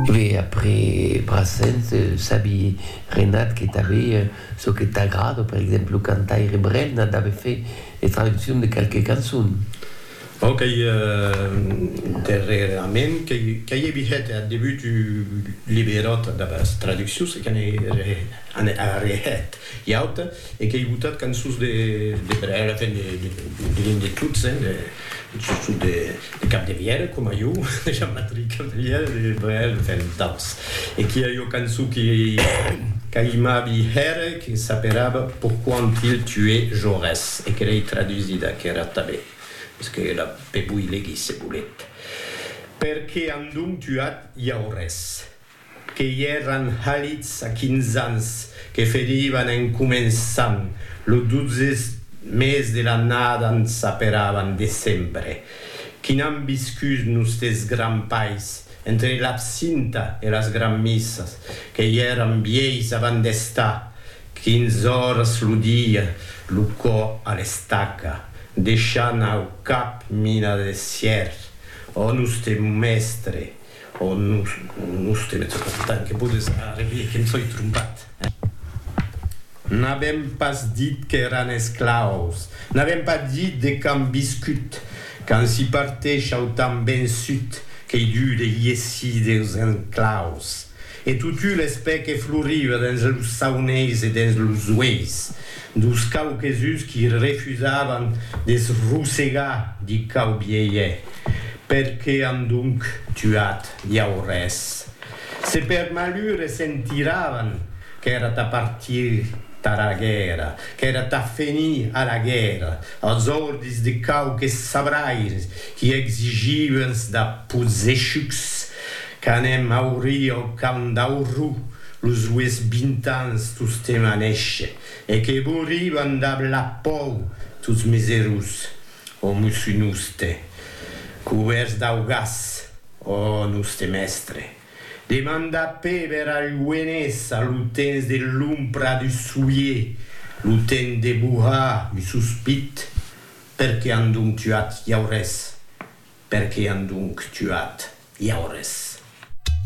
Ve après Brassens, sabi Renat que tanbe çò que t'agrada, per exemple lo cantaire Brel n'a dave fait de traduccion de qualque cançon. Bon, qu'ei darrerament qu'ei a vihet ath debut un liberòt damb as traduccions e que n'ei a rehet. Iaut, e qu'ei botat cançons de Brel, enfin diguem de tots, sustot de Capdevièlh, coma jo, de Jean-Patrick Capdevièlh, de Brel, enfin d'autres. E qu'i a ua cançon que qu'aimavi hèr, que s'aperava Pourquoi ont-il tué Jaurès? e que l'ei tradusida aquera tanben, mès que la pe voi legir se volet. Per qué an donc tuat Jaurès? que i èran halits a quinze ans, que ferivan en començant lo dotze mes de l'annada en s'aperavan de sempre, qui n'an viscut nustes grands pais, entre l'absinta e las granmissas, que i èran vièis avant d'estar quinze oras lo dia lo cò a l'estaca, deishant au cap mina de sièr, ò noste mestre, O nos, nos te metz pas tant que podes arrevier que em soi trompat, eh? N'avèm pas dit qu'èran esclaus, n'avèm pas dit de quand viscut, quand s'i parteisha autant vençut qu'ei dut de hiessir deus enclaus. E totu l'espè que floriva dens los sauneis e dens los ueis dos quauquesuns qui refusavan de se rosegar di quau bielhe, per que an donc tuat Jaurès? Se per malure sentiravan qu'èra tà partir tara guèrra, qu'èra tà fenir a la guèrra, als ordis de quauques sabraires qui exigiuens da pozechucs Qu'anem aurir au camp d'Aurrú los ues vint ans tostemp a néisher, e que bouriban dab la pòu tots miserus, o mussu noste, cubèrts dau gas, o noste mèstre, demanda Péber al Lluenés a lo temps de l'ompra du soulier, lo temps de bohar un sospit, Per que an donc tuat Jaurès? Per que an donc tuat Jaurès?